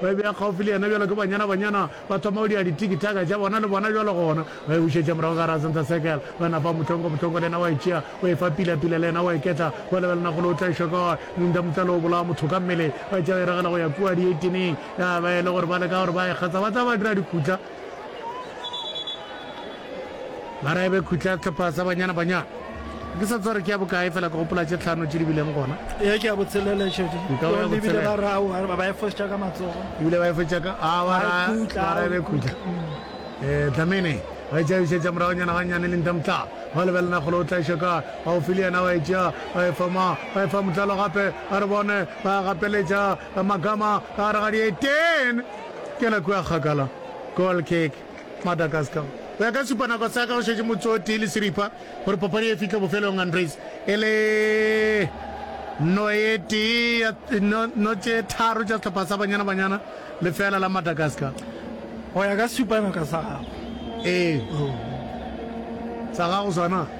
Ba bea kgaufsi le yena bjalo ke banyana-banyana, ba thoma go dira di-tiki-taka tša bona le bona bjalo gona. Ba e bušetša morago ka gare ga center circle. Ba na fa Motlhonko, Motlhonko le yena wa e tšea, wa e fa Pila, Pila le yena wa e ketla. Ba lebelana golo, o tla e hwa kae? Munda, Munda le o bolaya motho ka mmele. Ba tšea ba e ragela go ya kua dieitineng. Ya ba e le gore ba leka gore ba e kgatsa, ba tla ba dira dikhutla. mara ebe khutla tlhopha sa banyana banyana ke sa tsore ke ya bokae fela ke gopola tše tlhano tše di bileng gona e ke ya botshelela šedi ebile ba ra wa ba efositša ka matsogo ebile ba efositša ka a wa ra ra ebe khutla eh dlamene ba e tšabiša tša morago nyana ganyane le ntamtla ba lebelena golo o tlaša ka ba o file yena wa e tšea ba e fama ba e fa motlalo gape a re bone ba gapeletša magama ka gare ga dietene Kena kua kgakala. Goal kick, Madagascar. Go ya ka supanako sa ka, go šetše motse o tee le seripa gore papadi ye e fihle bofelong Andries e le no e tee ya no, no tše tharo tša sehlopha sa Banyana Banyana, lefeela la Madagascar. Go ya ka supanaka sa gago. Ee, sa gago sona.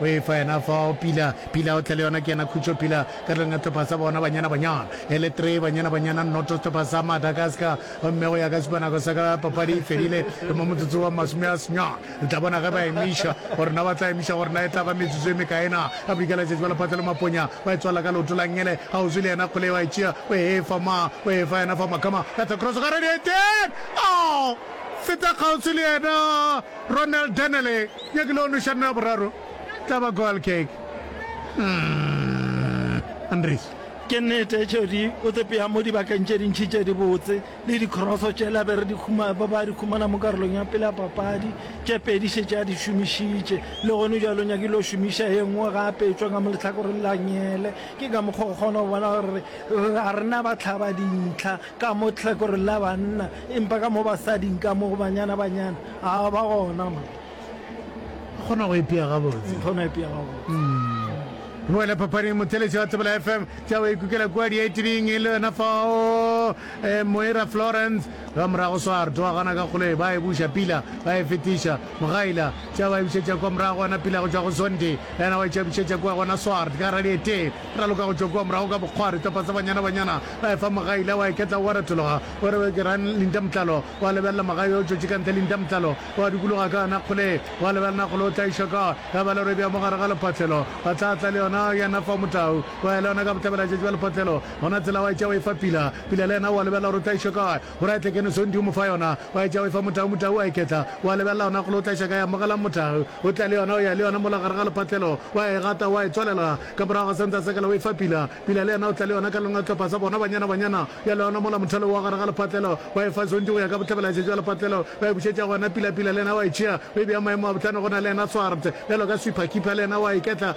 O efa yena fao, Pila, Pila, o tle le yona, ke yena khutšo, Pila, ka tlong ya sehlopha sa bona, Banyana, Banyana, e le three, Banyana, Banyana, noto, sehlopha sa Madagascar, gomme go ya ka sepanako sa ka, papadi e fedile, re mo motsotso wa masome a senyane, re tla bona ge ba emiša, gore na ba tla emiša, gore na e tla ba metsotso e mekae na, a bri ka letšatši ba lephatla le maponya, ba e tswalela ka leoto la Ngele, ga o zwi le yena kgole, wa e tšea, o e efa ma, o e efa yena fao, Makama, ka thakroso, ga re di eteng, oh! feta kgauswi le yena. Ronald Dennerle ya ke lehono šano ya boraro tla ba goal kick. Umm Andries. Ke nnete Jody o tsepea mo dibakeng tše dintši tše dibotse le dikroso tšela be re di ba ba di humana mo karolong ya pele ya papadi tše pedi šetše a di šomišitše le gone bjalo o nyakile go šomiša ye nngwe gape e tšwa ka mo lehlakoreng la nyele ke ka mokgwa o kgona go bona gore ga re na bahlabadintlha Ka mo tlhekoreng la banna, empa ka mo basading, ka mo go banyana-banyana, a ba gona mo. Re kgona go ipea gabotse. Re kgona go ipea gabotse. Re boele phapaning. Mothelesi wa Tsebela FM, tša o ikukela kua diaitiring e le yona fao, Moira Florence. Ka morago Soar twa gana ka kgoloi, ba e buša, Pila ba e fetiša, Mogaila tša ba e bušetša kua morago, gona Pila go tšwa go Zondi yena wa e tšabušetša kua gona Soar ka radieteng. Raloka go tšwa kua morago ka bokgwari, topa tsa banyana-banyana, wa efa mogai le, wa iketla oa retologa. O re, Ke rang Linda Motlalo. Wa lebelela mogai yo o tšwetše ka ntle Linda Motlalo. Wa dukologa ka yona kgole. Wa lebelela kgole o tla iša ka. Ya ba lorebe ya mo gare ga lephotlelo. Wa tla tla le yona yena fao motau. Wa ya le yona ka bohlabela-tšatši ba lephotlelo. Gona tsela wa e tšea wa e fa Pila. Pila le yena o a lebelela gore o tla iša ka. O re a tle kene Sondi o mo fa yona, o a e tšea o e fa motau, motau o a e ketla, o a lebelela yona golo o tla iša kae, amogelang motau, o tla le yona, o ya le yona mola gare ga lepatlelo, o a e gata, o a e tswalela ka morago ga sentsa sekala, o e fa Pila, Pila le yena o tla le yona ka lona tlhopha sa bona, banyana, banyana, ya le yona mola mothalo wa gare ga lepatlelo, ba e fa Sondi go ya ka bohlabela šetšo ya lepatlelo, ba e bušetša go yena Pila, Pila le yena o a e tšea, o e bea maemo a bohlano go na le yena Swart, bjalo ka Sweeper, Keeper le yena o a e ketla,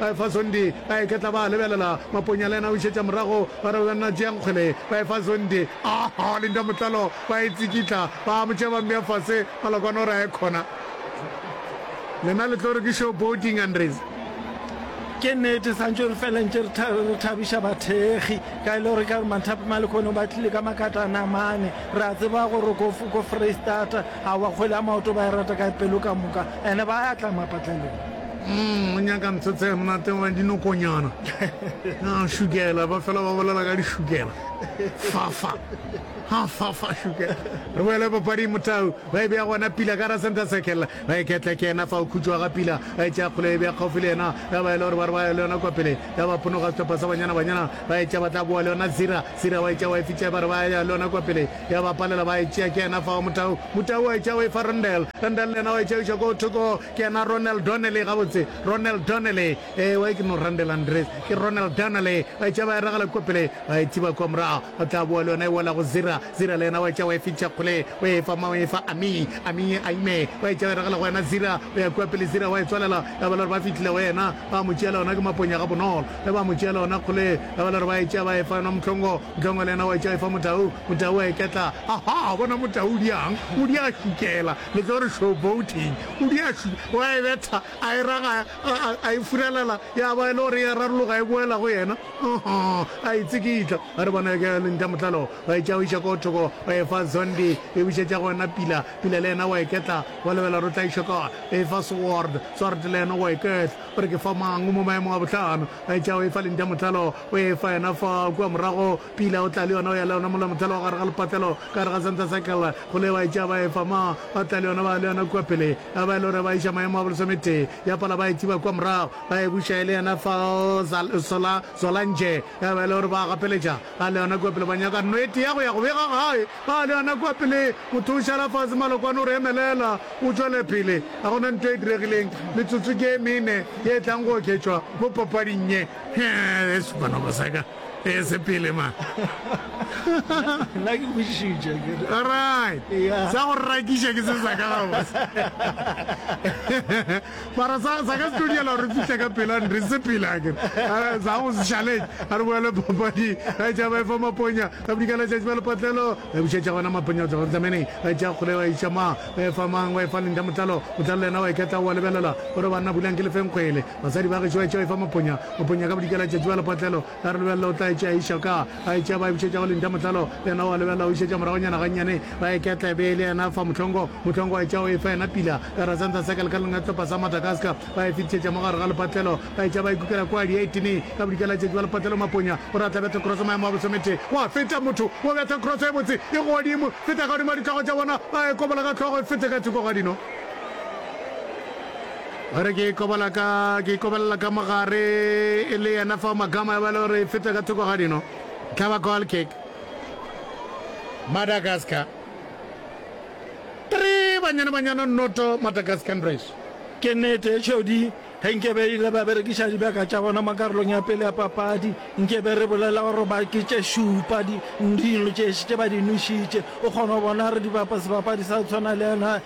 Baefazondi ba iketla ba a lebelela, Maponya le yena o išetša morago, ba re, Banna tšeang kgwele. Baefazondi, Aa, linda motlalo, ba e tsikitla, ba a mo tšea ba mmea fase, maloko a no re a ye khona. Lena le tlo re ke showboating, Andries. Ke nete, sa ntše re fela ntše re thabiša bathekgi, ka e le gore ka gore Manthape Malekono ba tlile ka makatana mane, re a tseba gore ko Foreistata, aowa, kgwele ya maoto ba e rata ka pelo ka moka. Ene ba ya tla mapatlelong. Umm, o nyaka ntho tse monate wa dinokonyana. Ha, šukela, ba fela ba bolela ka dišukela. Fafa. Ha, fafa, šukela. Re boele papading, motau. Ba e bea gona pila ka ra center circle. Ba e ketla ke yena fao, khutšo ga pila. Ba e tšea kgole, e bea kgaufi le yena. Ya ba e le gore ba re ba ya le yona kwa pele. Ya ba phonoga sehlopha sa Banyana Banyana. Ba etša ba tla boa le yona Zira. Sira wa etša wa e fitša, ba re ba ya le yona kwa pele, ya ba palela, ba e tšea. Ke yena fao Motau. Motau wa etša wa e fa Rondel. Rondel le yena wa etša wa iša koo thoko. Ke yena Ronel Donnelly, gabotse. Ronel Donnelly. Ewa, ke no Rondel Andreas. Ke Ronel Donnelly. Ba etša ba e ragela kwa pele, ba e thiba kwa morago. Ba tla boa le yona e wela go Sira. Sira le yena wa etša wa e fitša kgole, o e fa mang? O e fa Amie. Amie a ime. Ba etša ba e ragela go yena Sira. O ya kwa pele Sira wa e tswalela, ya ba le gore ba fihlile go yena, ba mo tšea le gona ke maponya gabonolo. Ge ba mo tšeela ona kgole, ge ba le gore ba e tšea ba e fa yona Mohlongo, Mohlongo le yena wa e tšea a e fa Motau, Motau a e ketla. Ahaa, bona Motau o di yang, o di a šukela, le tlo re show boating, o di a šuke, o a e betha, a e ragaya, a, a, a e furelela, ya ba e le gore e a rarologa e boela go yena, uh-huh, a e tsikitla. A re bona ke Lintamohlalo, ba e tšea o iša koo thoko, ba e fa Zondi, e bušetša go wena Pila, Pila le yena wa e ketla, wa lebela gore o tla e šokwa, e fa Soward, Soward le yena wa e ketla. Gore ke fa mang o mo maemong a bohlano, a etša o efa lentša mohlalo, o efa yona fa kua morago, pila o tla le yona, o ya le yona mola mohlalo wa gare ga lepatlelo, ka gare ga center circle, go le ba etša ba efa ma, ba tla le yona, ba ya le yona kua pele, ya ba e le gore ba iša maemo a bolesome-tee, ya pala ba e tsiba kua morago, ba e buša e le yena fa, Zal, Sola, Zolange. Taba e le gore ba gapeletša ga le yona kua pele, ba nyaka nno e tea go ya go bega gae ga le yona kua pele. Motho o šala fase, malokwane o re emelela o tšwele pele. Ga go na nto e diregileng, metsotso ke e mene ye e tlang go oketšwa mo papading ye. Yesu Barnaba sa ka, e se pele ma. Nna ke kwešišitše akere. Alright, sa go rakiša ke se sa ka gabotse. mara sa sa ka tlo diela re fihle ka pela re se pele a kere Eh, sa go se challenge a re boele papadi a tša ba efa maponya ka bodika la tšatši ba lepatlelo ba bušetša gona maponya go tloga tameneng ba tša kgole ba iša mang ba efa mang ba efa lentha motlalo motlalo le yena wa iketla wa lebelela gore banna bulang ke lefeng kgwele basadi ba gešo ba tšeo efa maponya maponya ka bodika la tšatši ba lepatlelo A re lebelela o tla etša a iša ka a etša ba e bušetša go Linda Motlalo yena o a lebelela o išetša moragonyana gannyane ba e ketla e be e le yena fa Mohlongo Mohlongo a etša o e fa yena Pila ka ra Santa Circle ka leng etlopa sa Madagascar ba e fetišetša mo gare ga lepatlelo ba etša ba e kukela kua di 18 ka bodika la letšatši ba lepatlelo Maponya o re a tla betha cross maemo a boso mete wa feta motho wo betha cross e botse e godimo feta ka godimo ga ditlogo tša bona ba e kobola ka hlogo e fete ka thoko ga dino Ba re ke ikobela ka, ke ikobelela ka mo gare e le yena fao Magama ya ba e le gore e feta ka thoko ga dino. E tla ba goal kick. Madagascar 3 Banyana Banyana noto Madagascan Race. Ke nnete e tšhodi, ge nkebe ile ba berekiša dibjaka tša bona mo karolong ya pele ya papadi, nkebe re bolela gore ba ke tše šupa, di, dino tše tše ba di nwešitše. O kgona go bona re di bapa sebapadi sa go tshwana le yena,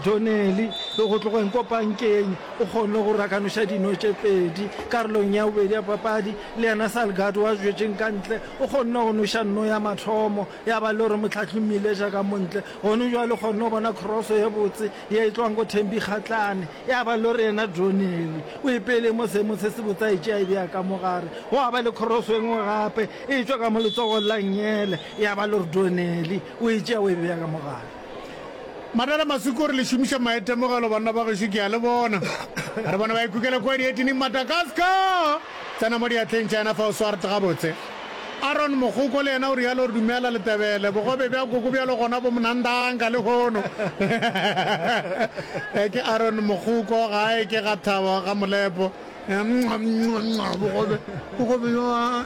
Doneli, go tlogeng kwa pankeng o kgonne go rakanoša dino tše pedi karolong ya bobedi ya papadi, le yena Salgado wa zwetšeng ka ntle o kgonne go noša nno ya mathomo ya ba le gore mohlahli o mmileša ka mo ntle. Gone bjale o kgonne go bona kroso ye botse ye e tlogang go Thembi Kgatlane ya ba le gore yena Doneli o ipele mo seemong se sebotse a e tšea a e bea ka mo gare. Gwa ba le kroso e nngwe gape e tšwa ka mo letsogong la Ngyele ya ba le gore Doneli o e tšea o e bea ka mo gare. Madala Masuku o re le šomiša maitemogelo banna ba gešo ke a le bona. A re bona ba ikukela kua dietining Madagascar tsena mo diatleng tša yena fa o swart gabotse. Aaron Mogoko le yena o realo re dumela Letebele bogobe bja koko bjalo gona bo mnandanga le hono. Ee ke Aaron Mogoko gae ke ga Thabo ga Molepo. Bogobe bogobe bjo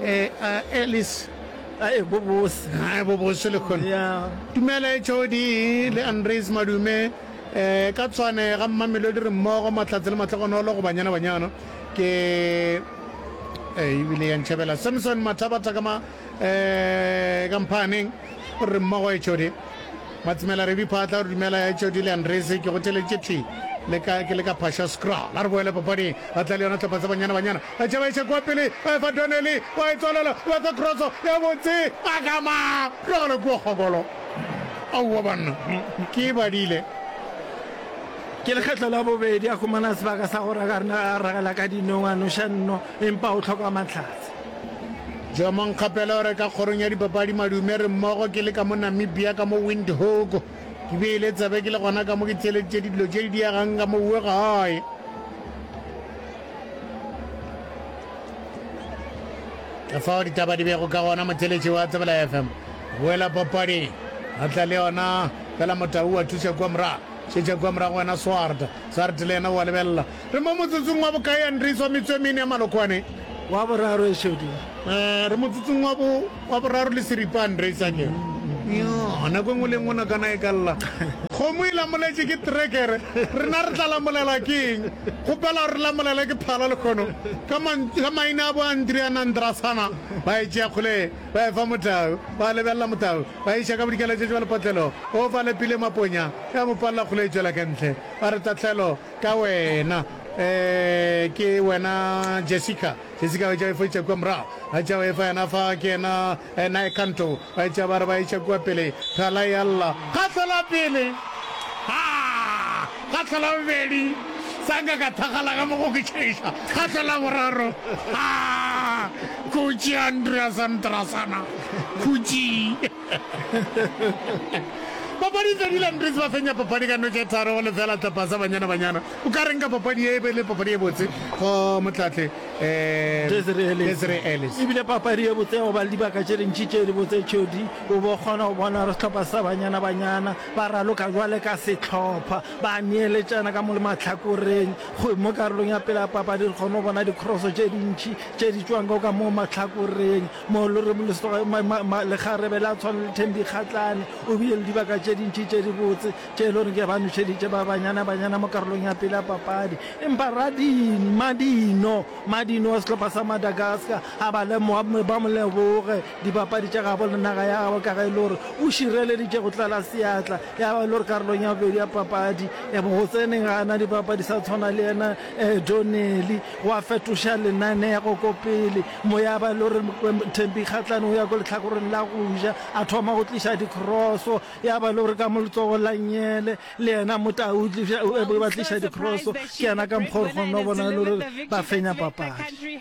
ee Alice. Ae bobose, ae bobose lehono. Tumelo e tšhodi le Andreas Madume eh, ka tshwane ga Mmamelodi re mmogo, Mahlatse le Mahlogonolo go Banyana Banyana ke eh, ebile ya ntšhabela Samson Mathabatha ka ma eh, ka Mphaaneng o re re mmogo e tšhodi. Matsimela re diphatla o re dumela e tšhodi le Andreas ke go theleditše thwi le ka ke le ka phasha scroll a re boele papading a tla le yona tlhopha tsa Banyana Banyana. Ba tšha ba iša kua pele, ba efa Donnelly, wa e tswalela, o batla kroso ya botse, ba gama, rogela kua kgokolo. Aowa banna, ke badile. Ke lekgetlo la bobedi a humana sebaka sa gore a ka nna a ragela ka dinong, a noša nno, empa o hloka mahlatse. Joe Monkgapela o re, Ka kgorong ya dipapadi madume re mmogo ke le ka mo Namibia, ka mo Windhoek. Ke beile tsebe ke le gona ka mo ke theeleditše dilo tše di diegang ka mo Uegae. fao ditaba di bego ka gona motheletši wa tsebela fm boela papadi a tla le yona fela motau wa thuša kua morago šetša kua morago wena swart swart le yena wa lebelela re mo motsotsong wa bokae andriso metswe mene ya malokwane wa boraro e šedi um re motsotsong wa bo Wa boraro le seripane, re e sa ke. Yoo, nako e nngwe le e nngwe nokana e ka lla. Kgomo e lamoletše ke trekere, rena re tla lamolelwa ke eng? Kgopela gore re lamolelwe ke phala lekgono. Ka mantsu, ka maina a bo Andrea na Ndrasana, ba e tšea kgole, ba e fa motau, ba lebelela motau, ba e iša ka bodikela tše tše ba lepotlelo, o fa Lepile maponya, ya mo palela kgole e tšwela ka ntle. Ba re, Tahlelo, ka wena. Ee, ke wena Jessica. Jessica o etša e fo etša kua morago, a etša o efa yena fa ke yena eh, nae Kanto ba etša ba re ba etša kua pele, Thala e alla ka hlola pele, haa, ka hlola bobedi, Sanga ka thakgala ka mo go ke tšhaiša, ka hlola boraro, haa, Khutši Andrea Sandrasana, Khutši. papadi tse di landries ba fenya papadi ka notše tharo go lefela tlapasa banyana banyana o ka reng ka papadi e be le papadi e botse go motlatle um desre ellis ebile papadi e botse go ba le dibaka tše dintši tše di botse tšhodi o bo kgona go bona re setlhopha sa banyana banyana ba raloka jwale ka setlhopha ba neeletšana ka mo le matlhakoreng go mo karolong ya pele ya papadi re kgone go bona dikroso tše dintši tše di tswang ka ka mo matlhakoreng Lekgarebe la tshwana le Thembikgatlane o bile le dibaka tše dintši tše dibotse tše e le gore ke ba nošeditše ba banyana-banyana mo karolong ya pele ya papadi empa Radini Madino Madino wa sehlopha sa Madagascar a ba lemoga ba mo leboge dibapadi tša gabo le naga ya gabo ka ge e le gore o šireleditše go tlala seatla ya ba e le gore karolong ya bobedi ya papadi e go tseneng ga ana dibapadi sa tshwana le yena um Donnelly wa fetoša lenaneo go ko pele Moyaba lo re Thembi Kgatlane o ya ko lehlakoreng la go ja, a thoma go tliša dikroso, ya ba lo re ka mo letsogo la Nyele le yena Motau ba tliša dikroso, ke yena ka mokgwa gore kgona go bona lo re ba fenya papadi.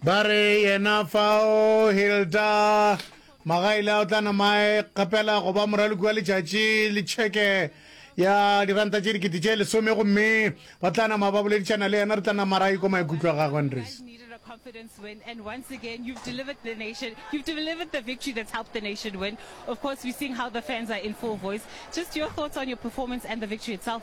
Ba re yena fao Hilda Magaile a o tla nama a e kgapela go ba moraloki wa letšatši le tšheke ya diranta tše dikete tše lesome gomme ba tla nama ba boledišana le yena re tla nama ra ikwa maikutlo a gagwe andres confidence win. And once again, you've delivered the nation. You've delivered the victory that's helped the nation win. Of course, we're seeing how the fans are in full voice. Just your thoughts on your performance and the victory itself.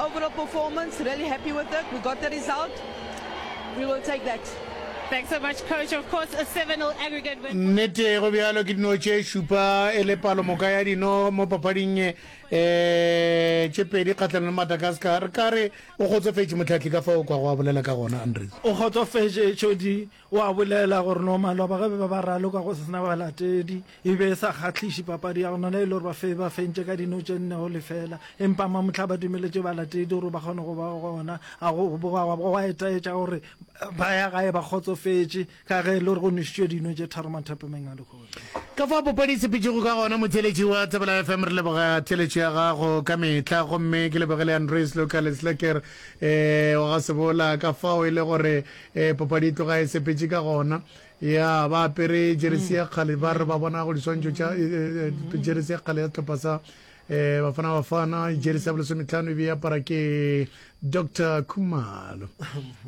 Overall performance, really happy with it. We got the result. We will take that. Thanks so much, coach. Of course, a 7-0 aggregate win. Nnete go bjalo ke dino tše šupa e le palomoka ya dino mo papading um eh, tše pedi kgatlhanong le madagascar re ka re o kgotsofetše motlhatlhi ka fa o kwa go a bolela ka gona andres o kgotsofetše tšodi O a bolela gore no maloba ge be ba raloka go se sena balatedi, e be e sa kgahliše papadi ya go nona e le gore ba fe ba fentše ka dino tše nne go lefela. Empa mamohla ba dumeletše balatedi gore ba kgone go ba gona. A go boga gwa bo gwa etaetša gore ba ya gae ba kgotsofetše ka ge e le gore go nwešitšwe dino tše tharo mathapameng a lehono. Ka fao bo padisepitšego ka gona, motheeletši wa Tsebela FM, re leboga theeletšo ya gago ka mehla gomme ke leboge le Andreas Luka Lesleker wa ga Sebola ka fao e le gore Ee, papadi e tloga e sepetše ka gona. Ya, ba apere jeresi ya kgale, ba re ba bona go diswantšho tša e, e, e, jeresi ya kgale ya sehlopha sa eh bafana bafana jeresi ya bolesometlhano e be e apara ke dr khumalo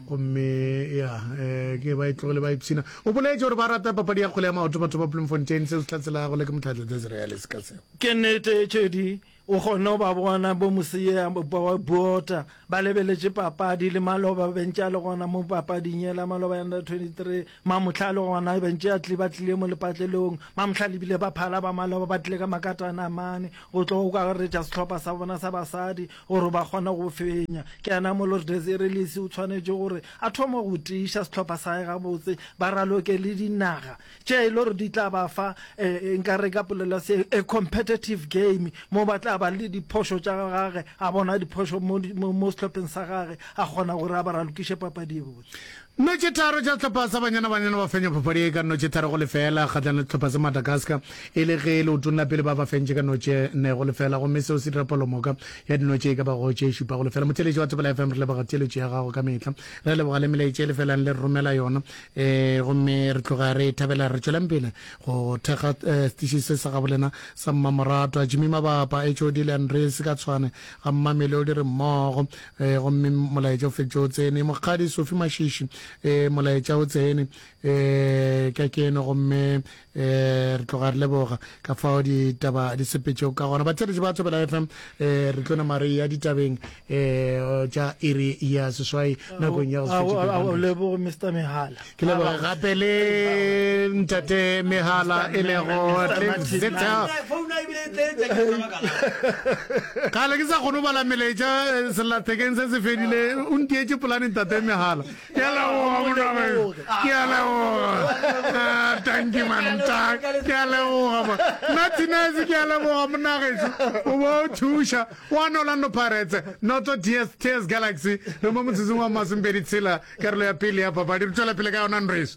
gomme ya eh, ke ba e tlogele ba ipshina o boletse gore ba rata papadi ya kgole ya maoto batho ba bloemfontein seo se tlatselago le ke motlhatla desreale se ka seo ke nete tšedi O kgonne go ba bona bomoseya bwa Buota ba lebeletše papadi le maloba bentše a le gona mo papading yela maloba ya under 23. Mamohla a le gona bentše a tli ba tlile mo lepatlelong. Mamohla le bile ba phala ba maloba ba tlile ka makatana mane go tlo go akaretša sehlopha sa bona sa basadi gore ba kgone go fenya. Ke yena mo lore Desiree Lisi o tshwanetše gore a thome go tiiša sehlopha sa gae gabotse ba raloke le dinaga tše e le gore di tla ba fa nkare ka polelo ya se a competitive game mo ba tla ba le diphošo tša gage a bona diphošo mo sehlopheng sa gage a kgona gore a ba ra lokiše papadi e botse Nnotši tharo tša sehlopha sa Banyana Banyana ba fenya phaphadi ye ka nnotši tharo go lefela kgahlano le sehlopha sa Madagascar e le ge leotong la pele ba ba fentše ka nnotši ne go lefela gomme seo se dira palomoka ya dinotši e ka ba go tše šupa go lefela. Motheeletši wa Thobela FM re leboga theeletšo ya gago ka mehla re leboga le melaetša e lefelang le re romela yona e gomme re tloga re e thabela re tšwelang pele go thekga eh, setiši se sa gabolena sa mmamoratwa jimmy mabapa hod le andres ka tshwane ga mmamelodi re mmogo eh, gomme molaetša o feditše o tsene mokgadi sofi mašiši eh, molaetša o tsene eh, ka keno gomme e re tloga re leboga ka fao ditaba di sepetšego ka gona batheletši ba thobela fm e re tlo nama re ya ditabeng e tša iri ya seswai nakong ya goleboge mr mehala ke leboge gape le ntate mehala e lego kale ke sa kgone go bala melaetša eh, sellathekeng se se fedile o ntietse polane ntate mehala Ke a leboga monageng, ke a leboga. Ah, thank you mantag, ke a leboga ma. Na Tinez ke a leboga monageso. O bo o thuša. Wa no Orlando Pirates, Noto TS TS Galaxy, re mo motsising wa masomepedi tshela, karolo ya pele ya papadi. Re tšwela pele ka yona nreso.